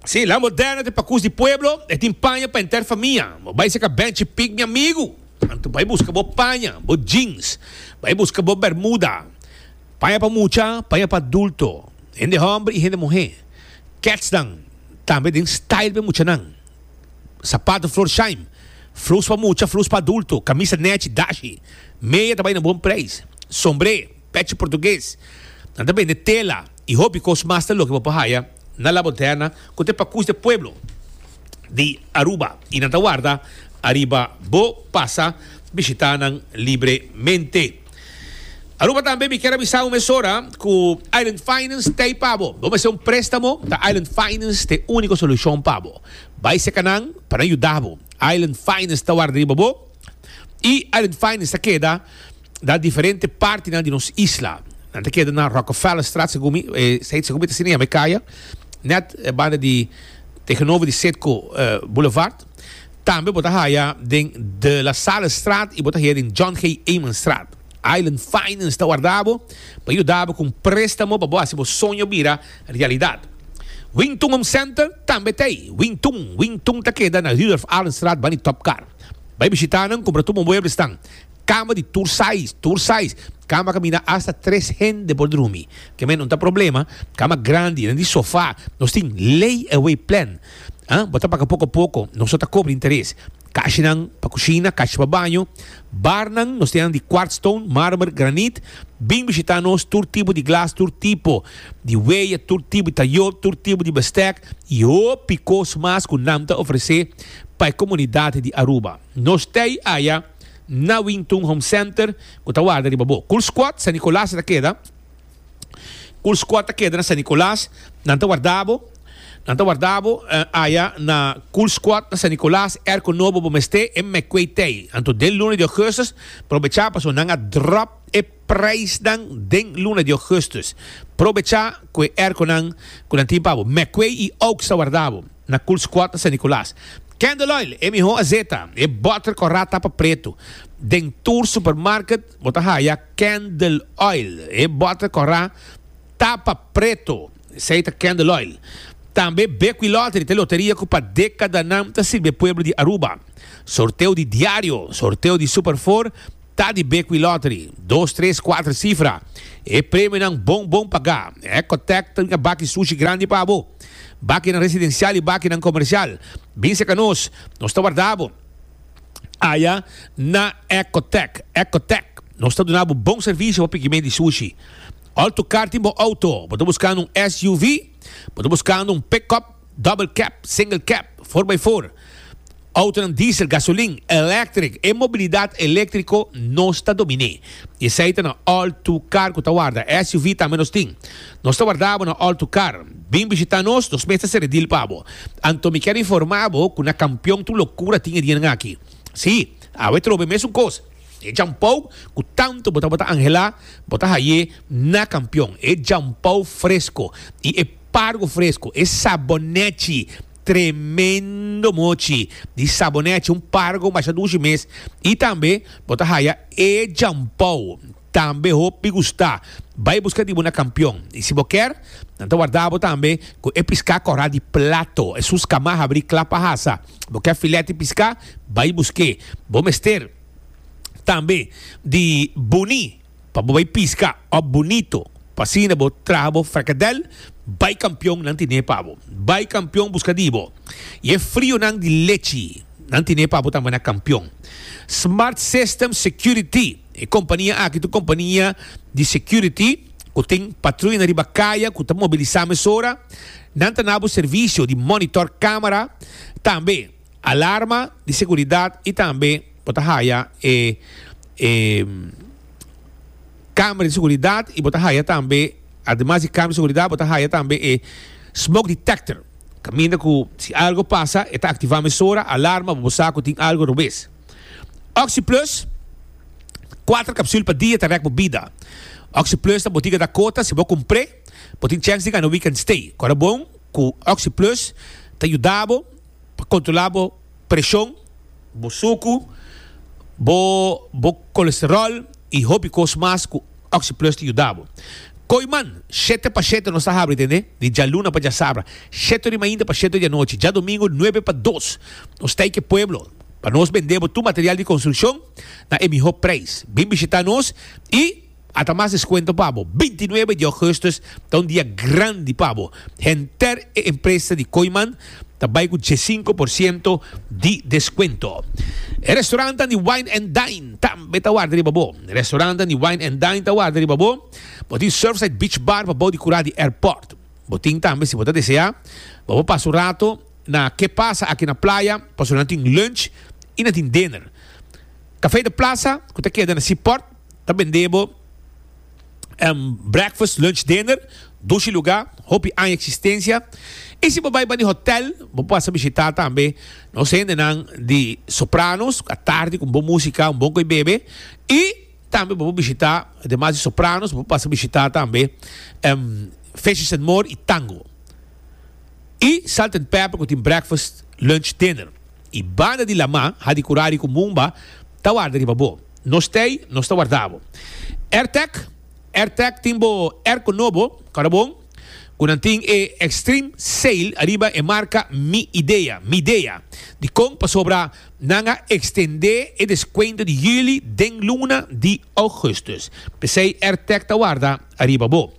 Sí, la moderna te pacus di pueblo, e tin paña pa enter famia. Bo bai seca benchi pic mi amigo. Anto bai busca bo paña, bo jeans, bai busca bo bermuda. Paña pa mucha, paña pa adulto, hende homber y hende muhe. Kets dan tambe den style be muchanan. Sapato flor shime, flus pa mucha, flus pa adulto, camisa nechi, dashi. Meya ta bai na bon prijs. Sombre. pechi portugues, nan ta bende tela y hopi cos mas ta loke bo por haya na La Moderna cu ta e pacus di e pueblo di Aruba y nan ta warda ariba bo pasa bishita nan libremente. Aruba tambe mi kier avisa bo mesora cu Island Finance ta ey pa bo. Bo mester un prestamo ta Island Finance ta e unico solucion pa bo. Bay seca nan pa nan yuda bo. Island Finance ta warda riba bo y Island Finance ta keda. na diferente partinan di nos isla. Nan ta keda na Rockefellerstraat, segun mi, eh, seid segun mi ta sini, me kaya, net eh, banda di, tegenover di Setco eh, Boulevard. Tambe bo ta haya den De La Sallestraat y bo ta haya den John G. Emanstraat. Island Finance ta warda bo pa yuda bo con prestamo pa bo haci bo soño bira realidad. Wing Tun Home Center tambe ta ei. Wing Tun, Wing Tun ta keda na Rudolf Allenstraat banda di Top Car. Bay bishita nan, cumpra tur bo mueblesnan. Kama di tur saiz, tur saiz. Kama kaminda asta tres hende por drumi. Ke men no ta problema. Kama grandi, nan di sofa. Nos tin lay away plan. Ah, bo ta paga poko poko. Nos no ta kobra interes. Kashinan pa kushina, kashi pa baño. Barnan, nos tin nan di kwart stone, marmer, granit. Bin bishita nos, tur tipo di glas, tur tipo di weya, tur tipo di tayo, tur tipo di bestek i hopi kos mas ku nan ta ofrese pa e komunidat di Aruba. Nos stay aya. na Wingtun Home Center cu ta warda riba bo. Cool Squad San Nicolas ta keda. Cool Squad ta keda na San Nicolas. Nan ta warda bo. Nan ta warda bo aya na Cool Squad na San Nicolas. Air cu nobo bo mester e McQuay Tei. Anto den luna di augustus probecha paso nan a drop e prijsnan den luna di augustus. Probecha cu e air cu nan tin pa bo. McQuay y Oaks ta warda bo. Na Cool Squad na San Nicolas. Candle Oil, e miho azeta, e butter cu a rat tapa pretu. Den tur supermarket bo ta haya Candle Oil, e butter cu a rat tapa pretu. Esey ta Candle Oil. Tambe Bequi Lottery ta e loteria cu pa decadanan ta sirbi e pueblo di Aruba. Sorteo di diario, sorteo di Super Four, Ta di Bequi Lottery, dos, tres, kuater sifra. E premionan bon bon pagá. Ecotech ta bin a baki sushi grandi pa bo. Bakinan residensial i bakinan komersial, bin serka nos, nos ta warda bo aya na Ecotech. Ecotech, nos ta duna bo bon servisio pa pikimen di sushi. Altocar tin bo outo? Bo ta buskando un SUV? Bo ta buskando un pick-up? Double cab, single cab, for by for, autonan diesel, gasolin, electric, e mobilidad electrico nos ta dominé. Y esey ta na all to car cu ta warda, SUV tambe nos tin. Nos ta warda bo na all to car. Bin bishita nos, nos mes ta sere deal pa bo. Anto mi kier informa bo cu na Campeon tur locura tin e dianan aki. Sí, awe trobe e mesun cos. E jampou cu tanto bo tabata angela, bo ta haye na Campeon. E jampou fresco y e. Pargo fresco, e sabonetchi, tremendo mochi di sabonetchi, un pargo masha dushi mes, y tambe bo ta haya e jampou, tambe hoop di gusta, bay buska di bo na Campeon, y si bo ker, nan ta warda bo tambe cu e pisca cora di plato, e su scama habri cla pa hasa, bo ker filet di pisca, bay buske, bo mester tambe di buni. Pa bo bai pisca of bunito pa asina bo traha bo fracadel bai campion nan tine pa bo bai campion busca di bo y e frionan di lechi nan tine pa bo tamba na campion smart system security e compania aki ta un compania di security cu tin patruya na riba caya cu ta mobilisa mesora nan ta na bo servicio di monitor camera tambe Alarma di seguridad y tambe bo ta haya e e camera di seguridad y bo ta haya tambe ademas di camera di seguridad bo ta haya tambe e smoke detector caminda cu si algo pasa e ta activa mesora alarma bo sa cu tin algo robes. Oxy plus cuater capsul pa dia ta rek bo bida. Oxy plus ta botica Dakota si bo cumpre bo tin chance di gana weekend stay. Cora bon cu oxy plus ta yuda bo. pa kontrolá bo preshon, bo suku, bo bo kolesteròl i hopi kos mas ku Oxyplus ta yuda bo. Ko'i man, shete pa shete nos ta habri tende, di djaluna pa djasabra, sheto di mainta pa sheto di anochi, djadomingu nuebe pa dos. Nos ta ei ke pueblo pa nos bendé bo tur material di konstrukshon na e mihó preis. Bin bishitá nos i. Ata mas descuento pa bo. Binti nuebe di augustus ta un dia grandi pa bo. Henter e empresa di Kooiman ta bai cu diesinco por ciento di descuento. E restaurantan di Wine and Dine tambe ta warda riba bo. Restaurantan di Wine and Dine ta warda riba bo. Bo tin Surfside Beach Bar pa bou di cura di airport. Bo tin tambe, si bo ta desea, pa bo pasa un rato na Ke Pasa Aki na Playa pasobra nan tin lunch y nan tin dinner. Café de Plaza cu ta keda na Seaport Ta bendé bo en breakfast, lunch, dinner, dushi lugá, hopi aña eksistensia. I si bo bai bani hotèl, bo por pasa bishitá tambe nos hendenan di Sopranos ku a tardi ku un bon músika, un bon koi bebe. I tambe bo por bishitá, ademas di Sopranos, bo por pasa bishitá tambe Fishes and More i Tango. I Salt and Pepper ku tin breakfast, lunch, dinner. I banda di lamá, Hadi Kurari ku Mumba ta warda riba bo. Nos t'ey, nos ta warda bo. Airtag, Airtag tin bo airco nobo, carabon, cu nan tin e extreme sail ariba e marca Mi Idea, Midea, di con pasobra nan a extende e descuento di juli den luna di augustus. P'esey Airtag ta warda ariba bo.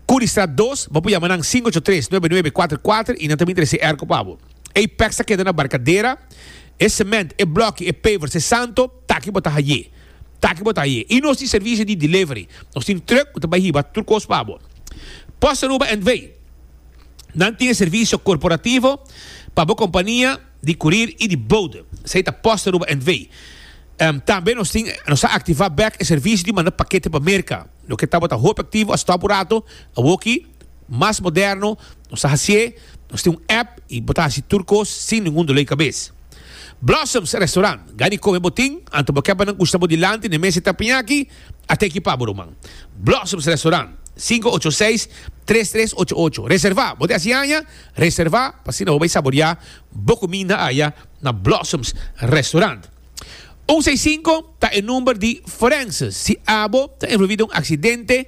Curiestraat dos, bo por yama nan sing'ocho tres, nuebe nuebe, cuater cuater y nan ta bin trece airco pa bo. Apex ta keda na Barcadera. e cement, e bloki, e pavers, e santo, taki bo ta haye, taki bo ta haye. Y nos tin servicio di delivery, nos tin truck cu ta bay hiba tur cos pa bo. Post Aruba NV. Nan tin e servicio corporativo pa bo compania di curir y di bode. Esey ta Post Aruba NV. Tambe nos tin, nos a activa bek e servicio di manda pakete pa Merca. Loke ta bo ta hopi activo, a stop un rato, awoki mas moderno nos ta hacié, nos tin un app y bo ta haci tur cos sin ningun dolé di cabes. Blossoms Restaurant, ga di come bo tin, anto bo ke pa nan custa bo dilanti n'e mes e ta piña aki, a ta ekipa bo ruman. Blossoms Restaurant, sinku ocho seis, tres tres ocho ocho. Reserva, bo ta haci aña? Reserva p'asina bo bay saboriá bo cuminda aya na Blossoms Restaurant. Un seis sinku ta e number di forenses si abo ta envolví den un accidente,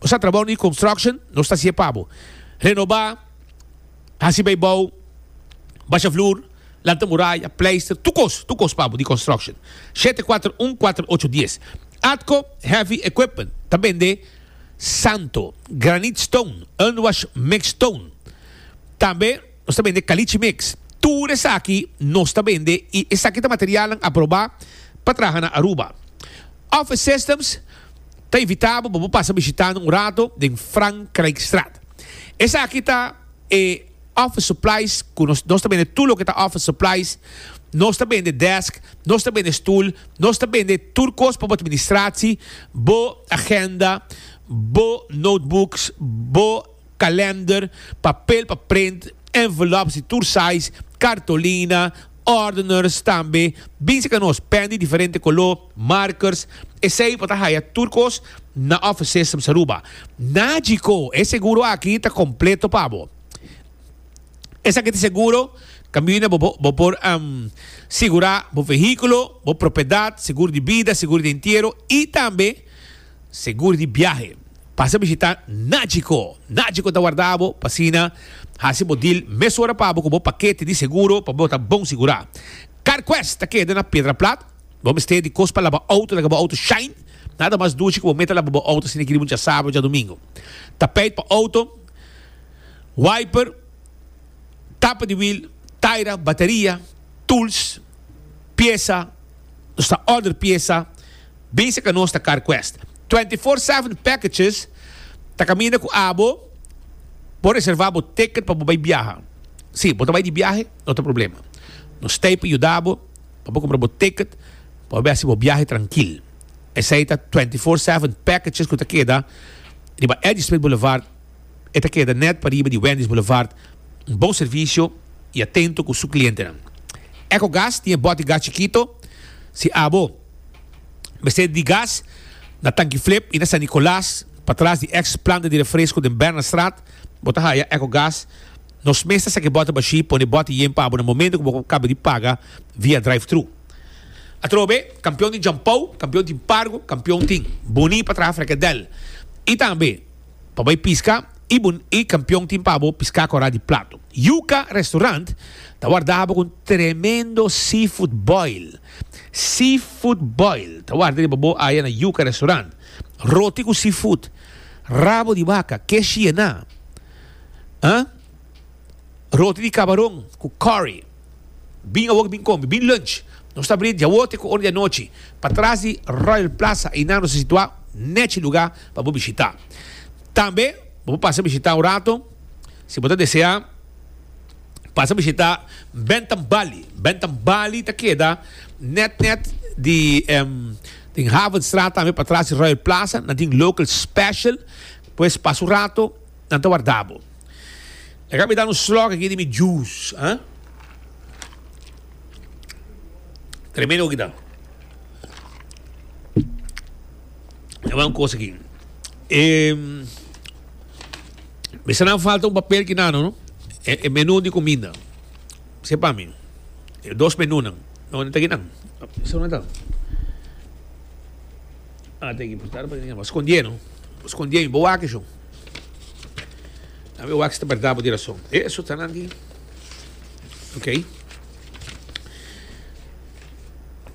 Nos ta trabao ni construction, nos ta sie pabo, renoba, hasi bay bou, basha vloer, lanta muraya, pleister, tur cos, tur cos pabo di construction. Shete cuater un cuater ocho dies. Atco Heavy Equipment ta bende santo, granite stone, unwash mixed stone, tambe. Nos ta bende Caliche Mix. Tur esaki nos ta bende y esaki ta materialnan aproba pa traha na Aruba. Office Systems ta invita bo pa bo pasa bishitando un rato den Frankrijkstraat. Esaki ta e office supplies cu nos, nos ta bende tur loke ta office supplies, nos ta bende desk, nos ta bende stoel, nos ta bende tur cos pa bo administratie, bo agenda, bo notebooks, bo. kalender, papel pa print, envelops di tur size, kartolina, ordeners, tambe binse ka nos pèn di diferente koló, markers, esei bo ta haya tur kos na Office Systems Aruba. Nagico, e seguro aki ta kompleto pa bo. Esaki ta seguro, kaminda bo bo por um, sigurá bo vehíkulo, bo propiedat, seguro di bida, seguro di entiero i tambe, Segur di biahe. Pasa bishita Nagico. Nagico ta warda bo pa asina hasi bo deal mesora pa bo ku bo pakete di seguro pa bo ta bon sigurá. CarQuest ta keda na Pedra Plat. Bo mester di kos pa laba outo, laga bo outo shine. Nada mas duchi ku bo meta laba bo outo asina e kiri bo dja sábado dja domingo. Tapeit pa outo, wiper, tapa di wiel, taira, bataria, tools, piesa. Nos ta order piesa bisa ka nos ta car quest. Twenty four seven packages ta caminda cu abo. Bo reserva bo ticket pa bo bay biaha. Si, bo ta bay di biahe, no ta problema. Nos stay pa yuda bo pa bo cumpra bo ticket pa bo haci bo biahe trankil. Esey ta twenty four seven packages cu ta keda riba Eddy Smith Boulevard. E ta keda nèt pariba di Wendy's Boulevard. Un bon servisio i atento ku su klientenan. Echo Gas tin e bòt di gas chikito. Si abo mester di gas na Tanki Flip i na San Nicolas, patras di èks planta di refresko den Bernardstraat, bo ta haya Echo Gas. Nos mes ta saka e bòtnan bashí, pone e bòt iyen pa bo na momento ku bo kaba di paga via drive-thru. Atrobe, kampion tin Jampou, kampion tin Pargo, kampion tin. Boni pa traha frekedèl. I tambe. Pa bai piska y bo e campeon tin pa bo pisca cora di plato. Yuca Restaurant ta warda bo con tremendo seafood boil. Seafood boil ta warda riba bo aya na Yuca Restaurant. Roti cu seafood, rabo di baca, keshi yena, eh, roti di cabaron cu curry. Bin awor bin come, bin lunch. Nos ta bini diawor te ku ora di anochi pa tras di Royal Plaza einan nos ta situá nèt e lugá pa bo bishitá. Tambe bo por pasa bishitá un rato si bo ta deseá pasa bishitá Bentham Bali. Bentham Bali ta keda nèt nèt di den Havenstraat tambe pa tras di Royal Plaza nan tin local special pues pasa un rato. Nan ta warda bo. E ka mi da un slòk aki di mi jus, ha? Tremendo ku ki ta. E wan kos aki. E, mi sa nan falta un papel ki nano, no? E, e menu di kuminda. Se pa mi. E dos menunan. No, no ta ki nan. Sa una ta. Ah, ta ki. Por estar pa ki nan. Bo skondie, no? Bo skondie mi. Bo wak e shon. Tambe wak si ta berdad bo di rason. E esotanan di Ok.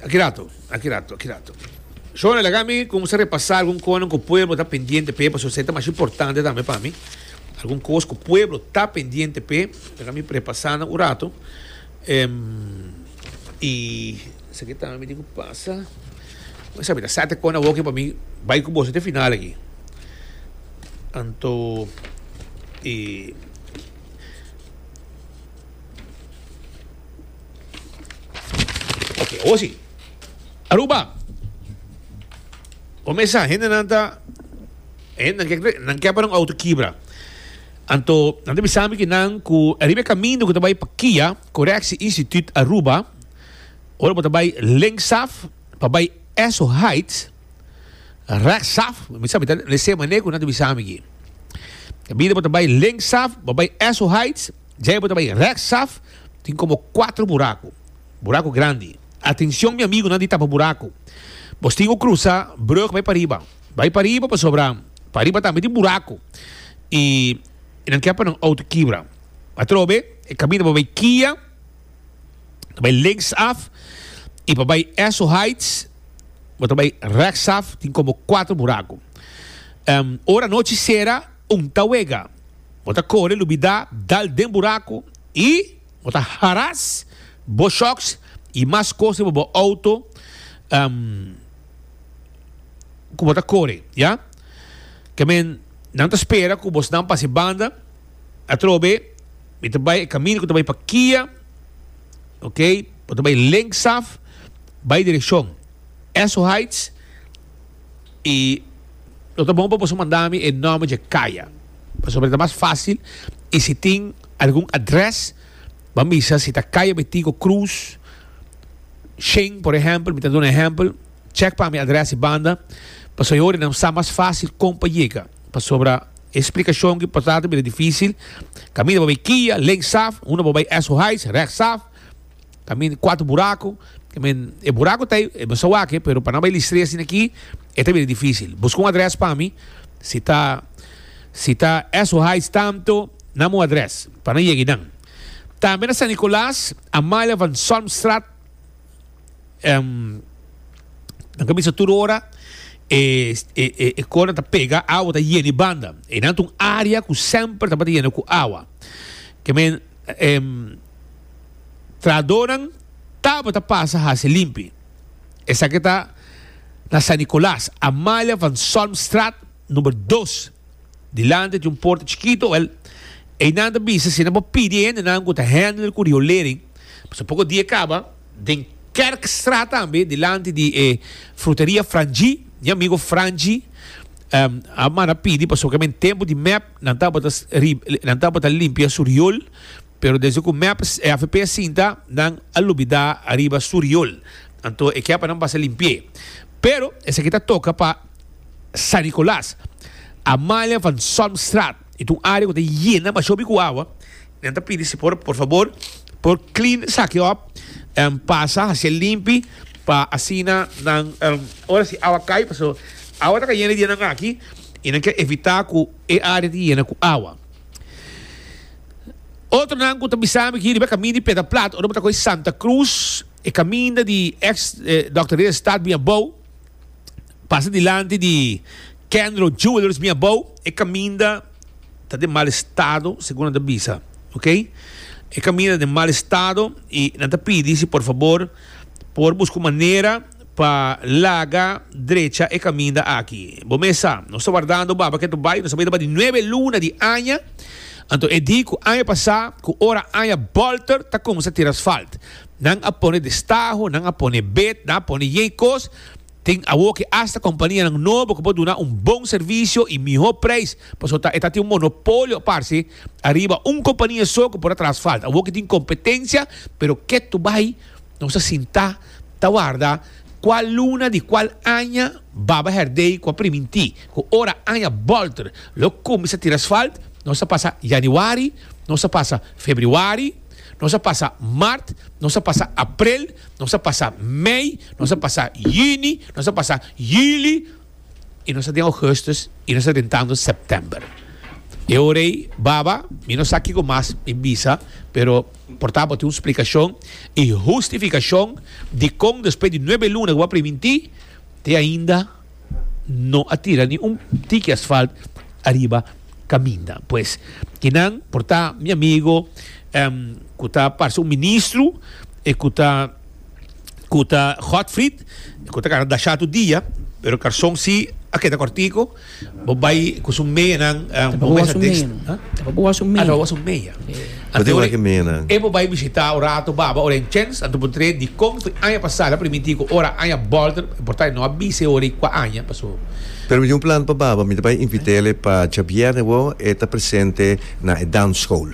Aki rato, aki rato, aki rato. Shona, laga mi kung sa repasa algun konan ku pueblo ta pendiente p'e, pasobra se ta masha importante tambe pa mi. Algun kos ku pueblo ta pendiente p'e, laga mi repasana un rato. y esaki ta ami tin cu pasa pues ami ta sa te con awoke pa mi bay cu boso te final aki anto y ok awo si Aruba o mesa hendenan ta nan ke pa nan auto kibra. Anto, nan ta bisa mi ki nan ku riba e kaminda ku ta bai pa Kia Correctie Instituut Aruba, ora bo ta bai lenksaf pa bai Esso Heights, rèksaf, mi sa mi ta lese mane ku nan ta bisa mi aki. Kaminda bo ta bai lenksaf, bo bai Esso Heights, djai bo ta bai rèksaf, tin komo kuater buraku, buraku grandi. Atenshon mi amigunan di Tapa Buraku, bos tin ku krusa brug bai pa riba. Bai pariba pasobra pariba tambe tin buraku i e nan ke pa nan outo kibra. Atrobe e kaminda pa bai Kia, ta bai linksaf i pa bai Esso Heights bo ta bai reksaf tin komo kuater buraku. Ora anochi sera un ta wega bo ta kore lubida dal den buraku i bo ta haras bo shoks i mas kos riba bo outo. cu bo ta core, ya? Ke men, nan ta spera cu bosnan pasa e banda. Atrobe, mi ta bay e camino cu ta bay pa Kia, ok? Bo ta bay linksaf, bay direccion Esso Heights, y lo ta bon pa boso manda mi e nomber dje caya, pasobra ta mas facil, y si tin algun adres, bo a misa si ta Caya Betigo Cruz, Sheng, por ehempel, mi ta duna ehempel. Check pa mi adres y banda pasobra e hora nan sa mas facil con pa yega pasobra e explicacion ki pasa ta bira dificil caminda pa bay Kia link saf uno pa bay Esso Heights recht saf camin cuatro buraco I mean e buraco ta ay masa wak pero pa nan bay Listree asina aki e ta bira dificil busca un adres pa mi si ta si ta Esso Heights tanto nama un adres pa nan yega y nan tambe na San Nicolas Amalia van Zalmstraat. em, nan ta bisa tur ora e, e, e, e konan ta pega, awa ta yena i banda. E nan ta un área ku semper tabata yena ku awa. Ke men, em, trahadonan tabata pasa hasi limpi. Esaki ta na San Nicolas, Amalia van Solmstraat, Number dos, dilanti di un porta chikito, wèl, einan ta bisa si nan por pidi e hendenan ku ta hèndel ku riolering, pasobra poko di e kaba den Kerkstraat tambe, dilanti di e Fruteria Frangi, mi amigo Frangi a manda pidi pasobra kimen tempu di mèp nan tabata nan tabata limpia su riol. Pero desde cu mep AFP a sinta, nan a lubida ariba su riol, anto e kier pa nan pasa limpi'e. Pero esaki ta toca pa San Nicolas, Amalia van Zalmstraat, y ta un area cu ta yena mashopi cu awa. Nan ta pidi si por por fabor por clean esaki op, pasa haci'e limpi pa asina nan ora si awa cay, pasobra awa ta cayendo dianan aki y nan kier evita cu e area ta yena cu awa. Otronan ku ta bisa mi aki riba e kaminda di Pedra Plat ora bo ta kohe Santa Cruz, e kaminda di eks Dòkter Rey Estrada bini abou, pasa dilanti di Kendro Jewelers bini abou, e kaminda ta den mal estado segun nan ta bisa, ok. E kaminda ta den mal estado i nan ta pidi si por fabor por buska un manera. pa laga drecha e kaminda aki. Bo mes sa, nos ta wardando baba ketu bai, nos ta bai tabata di nuebe luna di aña, anto e di ku aña pasá ku ora aña bòlter ta kuminsa tira asfalt. Nan a pone destaho, nan a pone bet, nan a pone yei kos, tin awo ke asta kompanianan nobo ku por duna un bon servisio i mihó preis, pasobra ta e ta tin un monopolio a parse ariba un kompania so ku por a traha asfalt. Awo ke tin kompetensia, pero ketu bai. Nos a sintá ta warda kual luna di kual aña Baba Herdey ku a primintí ku ora aña bòlter lo kuminsá tira asfalt. Nos a pasa yaniwari, nos a pasa febriwari, nos a pasa mart, nos a pasa aprel, nos a pasa mei, nos a pasa yuni, nos a pasa yuli. y nos ta den Augustus y nos ta rentando September. E ora ei, baba, mi no sa kiko mas mi bisa, pero por ta bo tin un splicacion y hustificacion dicon despues di nuebe luna cu bo a priminti, te ainda no a tira ni un tiki asfalt ariba caminda. Pues, kinan por ta mi amigo cu ta parce un ministro y cu ta ku ta hot frit ku ta kara dashatu dia pero karson si a keda kortiko bo bai ku su meanan un poku mas adeks ta pa buha su mea su mea anto ora e bo bai bishita un rato baba ora en chens anto bo tre di kon fu aña pasada a permiti ku ora aña bolter importa no a bise ora i kua aña paso Pero mi tin un plan pa baba mi ta bai invitele pa djabièrnè bo e ta presente na e dansschool.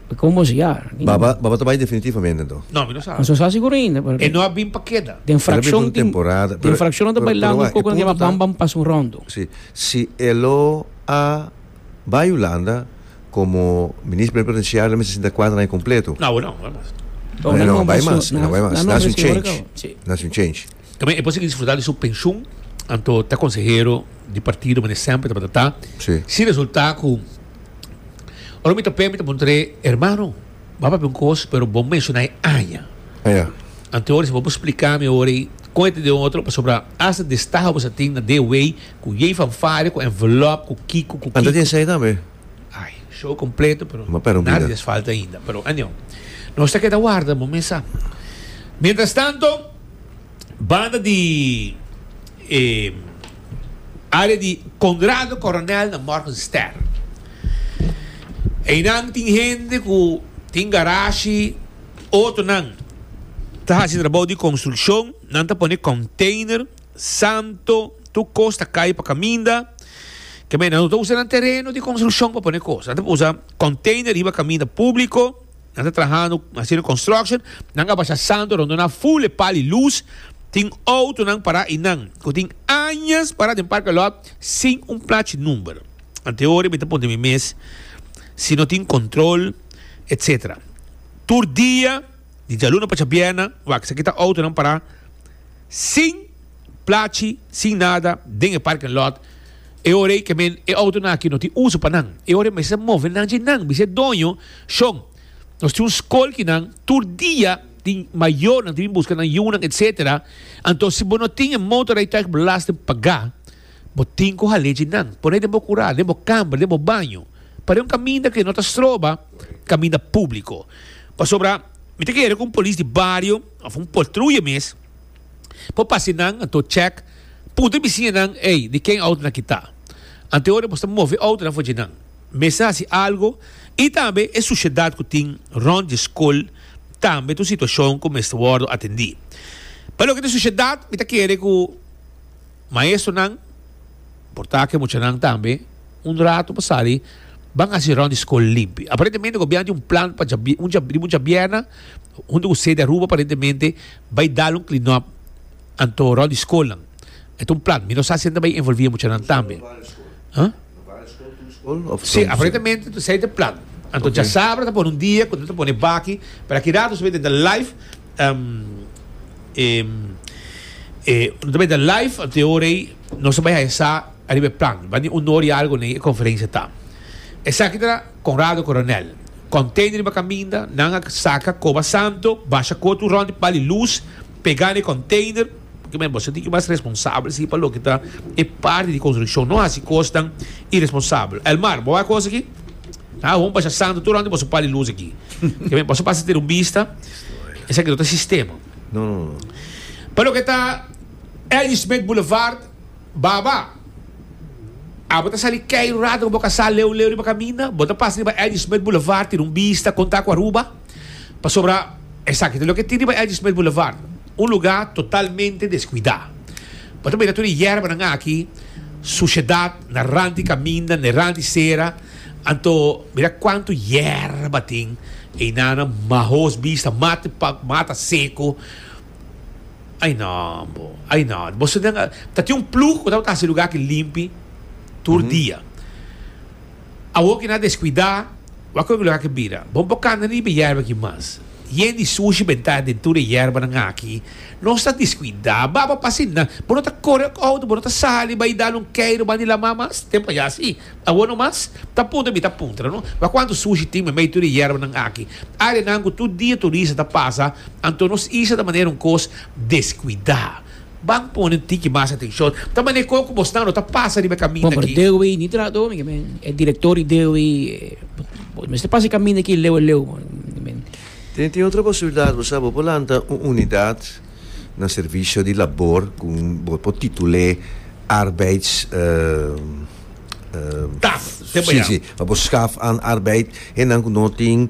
Mi con bos ya. Baba, baba ta bai definitivamente enton? No, mi no sa. Nos no sa sigur ainda, pero. E no a bin pa keda. Den fraccion. El a bin pa un temporada. Den fraccion nan ta bailando un poco nan kiba bam bam pas un rondo. Si, si e lo a bai Hulanda como minister plenipotenciario mester sinta cuater aña completo. No, awe no, no bai mas. No, e no bai mas, e no bai mas. Naci un change, naci un change. Tambe e por sigui disfruta di su pension, anto ta consehero di partido, mane semper tabata ta. Si. Si resulta cu. Ora mi ta pé, mi ta puntré, hermano, ba papi un kos, pero bo menshonai aña. Ja. Ante ora, si bo bo spliká mi ora ei, kon e ta den otro, pasobra hasta destaho bo sa tin na de wei, ku yei fanfaria, ku envelop, ku kiko, ku kiko. Anta tin esei tambe? Ai, show kompleto, pero Ma pero nada bida. di es falta ainda. Pero anyao, nos ta keda warda, bo mes sa. Mientrastanto, Banda di e área di Konrado Koronèl na Morgenstern. Einan tin hende ku tin garashi, otonan ta hasi trabou di konstrukshon, nan ta pone kònteiner, santo, tur kos ta kai pa kaminda. Kemey, nan no ta usa nan tereno di konstrukshon pa pone kos, nan ta usa kònteiner riba kaminda públiko. Nan ta trahando haciendo construction. Nan a basha santo rondó nan full e pal y luz. Tin autonan pará y nan, cu tin añas pará den parking lot sin un plachi number. Ante ora mi ta puntra mi mes si no tin control etc. Tur dia di djaluna pacha bierna wak esaki ta autonan pará sin plachi, sin nada den e parking lot. E ora ei kemen e outonan aki no tin uso pa nan. E ora ei mester ta move nan dje nan, bis'e doño, Shon, nos tin un skol ki nan tur dia tin mayornan tin bin buska nan yunan, etcetera, anto si bo no tin e motorrijtuigbelasting pagá, bo tin ku hal'é dje nan, pon'é den bo kurá, den bo kamber, den bo baño, par'é un kaminda ku no ta stroba, kaminda públiko. Pasobra mi ta kere ku un polis di bario òf un poltruya mes, Por pasa nan, anto check, puntra bisiñanan, ey, di ken autonan ki ta? Anto e ora nos ta move autonan for dje nan. Mester haci algo y tambe e suciedad cu tin rond dje scol tambe ta un situacion cu mester wordo atendi. Pa loke ta e suciedad mi ta kere cu Maestronan, por ta ke muchanan tambe, un ratu pa sali ban hasi rònt di skol limpi. Aparentemente gobièrnu tin un plan pa djabi un djab un djabièrna huntu ku sede Aruba aparentemente bai dal un klinòp anto rònt di skolnan. E ta un plan. Mi no sa si nan ta bai envolvi e muchanan tambe. Sí, aparentemente tu esey ta plan. Anto djasabra ta pone un dia cu nan ta pone baki, pero aki rato nos ta bay den ta live, nos ta bay den ta live, anto e ora ey nos a bay haya sa ariba e plan. Bandi un ora y algo nen e conferencia ta. Esaki ta Conrado Coronel. Container riba caminda, nan a saca coba santo, basha coto rond di pal di luz, pega na e container. Porque men boso tin ki mas responsabel si pa loke ta e parti di construccion. No haci cosnan irresponsabel. Elmar, bo a cos aki? Ah, bon pasha santo tur anto boso pali luz aki. Porque men boso pasa tira un bista, esaki no ta sistema. No, no, no. Pa loke ta Eddy Smith Boulevard, baba, abo ta sali kei un rato ku bo ka sa leu leu riba kaminda, bo ta pasa riba Eddy Smith Boulevard tira un bista, konta ku Aruba. Pasobra esaki ta loke tin riba Eddy Smith Boulevard, un luga totalmente deskuidá. Bo ta mira tur e yèrbanan aki, sushedat na rant di kaminda, na e rant di sera. Anto mira kuantu yèrba tin einanan, mahos bista, mati pòk, mata seko. Ai nò bo, ai nò. Bo sinden, ta tin un plug ku tabata hasi e luga aki limpi tur dia. Awor ki nan a deskuidá, wak kon e luga ke bira. Bon por kanta riba e yèrba aki mas. Yen di sushi bentá den tur e yèrbanan aki. Nos ta deskuidá. Ba bo pasa asina. Bo no ta kore òk outo, bo no ta sali bai dal un keiru bandi lamá mas. Tempu a yasí. Awor no mas. Ta puntra mi ta puntra no. Wak kuantu sushi tin meimei tur e yèrbanan aki. Áreanan ku tur dia turista ta pasa. Anto nos isla ta manera un kos deskuidá. Ban pone tiki mas atencion. Ta mane con cu bos nan lo ta pasa riba e caminda Bon, pero aki. Dewey ni tra do, mira men. E director di Dewey, bo mester pasa e caminda aki leu a leu, mira men. Tin, tin otro posibilidad, bo sa, bo por lanta un unidad na servicio di labor cu bo por titul'e arbeids, Taf, te si, bayaw. si, pa bo schaf an arbeid, e nan cu no tin.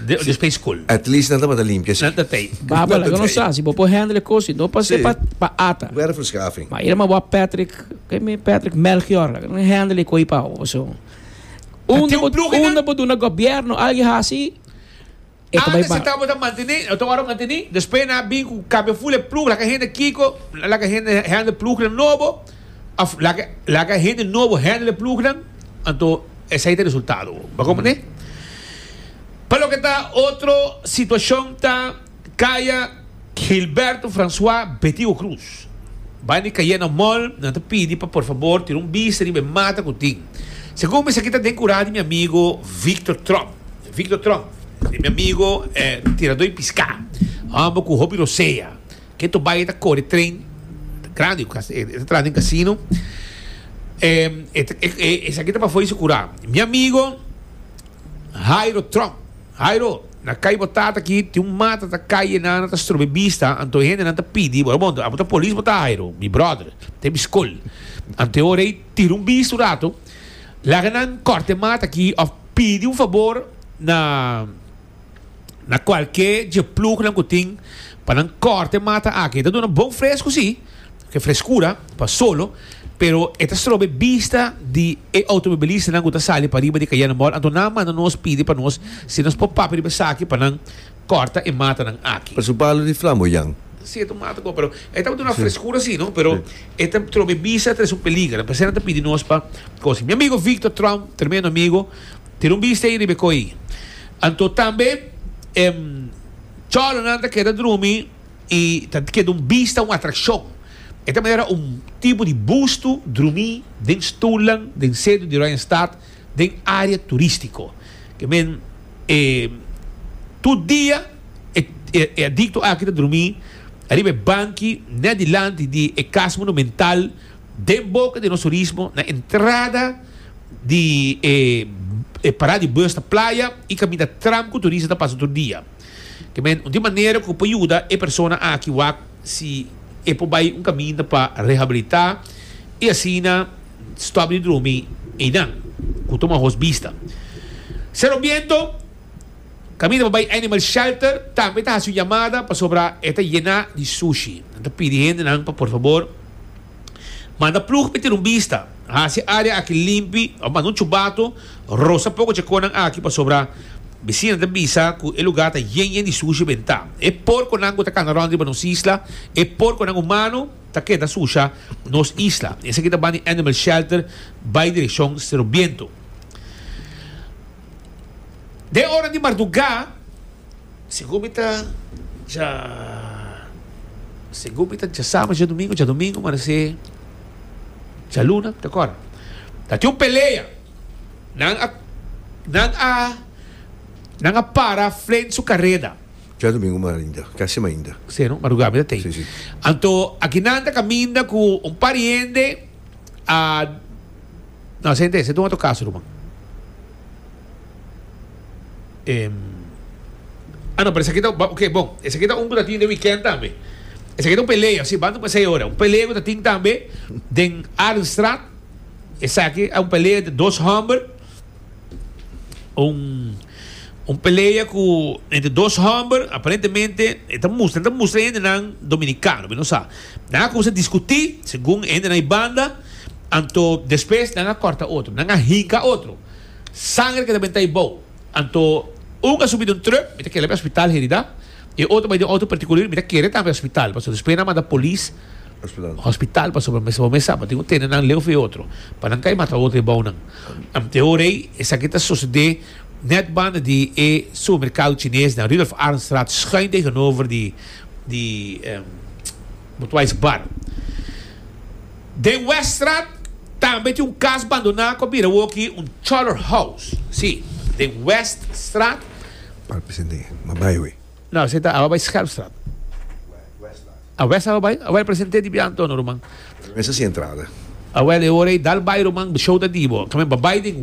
Di play school. At least nan tabata limpia si. Nan ta tei. Baba laga nos sa, si bo por handle e cos, no pa sepa pa ata. Bo era verschaving. Ma ira ma bo a Patrick, ke mi Patrick Melchior, laga nan handle e koi pa bo. So, unda bo, unda bo duna gobierno algi hasi, e ta bai ba. Tabata mantene, ta ora mantene, despues nan a bin ku cambia full e plug, laga hende kiko, laga hende handle plugnan nobo. Of laga hende nobo handle e plugnan, anto esei ta e resultado bo. Bo comprende? Pa loke ta otro situacion ta kaya Gilberto Francois Betigo Cruz. Bai na e Cayena Mall, nan ta pidi pa por fabor tira un bista riba e mata cu tin. Segun mi esaki ta den cura di mi amigo Victor Trump. Victor Trump, mi amigo e tirador di pisca. Homber cu hopi rosea. E to bai e ta kore tren grandi ku kasta. E ta traha den kasino. Esaki ta pafó di su kurá. Mi amigo Hairo Trump, Hairo, na kai bo ta aki tin un mata ta kai e nana ta strobe bista anto e hendenan ta pidi bo. Bon, abo ta polis bo ta Hairo, mi bròder. Te mi skol. Anto e ora ei tira un bista un ratu. Laga nan kòrta e mata aki òf pidi un fabor na. na cualkier dje plugnan cu tin pa nan corta e mata aki. E ta duna bon fresco, si, e frescura pa solo, pero e ta stroba e bista di e automobilistanan cu ta sali pa riba di Cayenne Mall. Anto nan a manda nos pidi pa nos si nos por papia riba esaki pa nan corta e matanan aki. Pasobra palo di flamboyan. Cierto mata bo, pero e ta duna frescura si no, pero e ta troba e bista, ta trece un peliger. P'esei nan ta pidi nos pa cosi. Mi amigo Victor Trump, tremendo amigo. Tin un bista ei riba e koi. Anto tambe e cholonan ta keda drumi i ta keda un bista, un atrakshon. E ta manera un tipo di bustu drumi den stulnan den sentro di Oranjestad den area turistiko. Ke men e tur dia e adikto aki ta drumi riba e banki net dilanti di e kas monumental. Den boca di nos turismo, na entrada di e parada di bus na playa y caminda tram cu turista ta pasa tur dia. Te men un di manera cu por yuda e persona aki wak si e por bay un caminda pa rehabilita y asina stop di drumi eynan cu ta un ahos bista. Cerro Biento, caminda pa bay animal shelter, tambe ta haci un yamada pasobra e ta yena di sushi. Nan ta pidi hendenan pa por fabor Manda plug pa e tira un bista. Hasi e área aki limpi, òf manda un chubato, rosa poko chekonan aki pasobra bisina ta bisa ku e lugá ta yen yen di sushi den ta. E porkonan ku ta kanda rònt riba nos isla, e porkonan humano ta keda susha nos isla. Esaki ta ban di Animal Shelter bai direkshon Serobiento. Den e ora di mardugá. Sigur mi ta dja sigur mi ta dja sabat dja dumingu dja dumingu marece dja luna ta cora ta tin un pelea nan a nan a nan a para frente su careda. Dja dumingu marinda ca sima ainda. Sí no maruga mi ta tin sí sí anto aki nan ta caminda cu un par di hende a no sente esei ta un otro caso ruman. Em, ah, no, pero esaki ta, ok, bon, esaki ta un ku ta tin den weekend tambe. Esaki ta un pelea, si, banda pa sei ora. Un pelea ku ta tin tambe den Arenstraat. Esaki a un pelea entre dos homber. Un, un pelea ku, entre dos homber, aparentemente, e ta mustra, e ta mustra e hendenan dominikano, mi no sa. Nan a kuminsá diskutí, segun e hendenan ei banda, anto despues nan a kòrta otro, nan a hinka otro. Sanger ke ta benta e bou. Anto un a subi den un truk, mi ta kere bay hospital herida, e otro bay den auto particulir, mi ta kere tambe hospital, pasobra despues nan a manda polis hospital pasobra mester bo mesa, bo tin tene nan leu for e otro, pa nan kai mata otro e bou nan. Te ora ei esaki ta sosode net banda di e supermercado chines nan, Rudolf Arenstraat schuin tegenover di di Budweiss bar. Den Weststraat tambe tin un cas bandoná cu a bira awoki un Choler House. Sí, den Weststraat. Park Presidente, m'a bai awe. No, esei ta awa bai Schelpstraat. A West awa bai? Awel Presidente di biantono, ruman. Mesa si entrada. Awel, e ora ei dal bai, ruman, bo show ta di bo. Kami m'a bai den.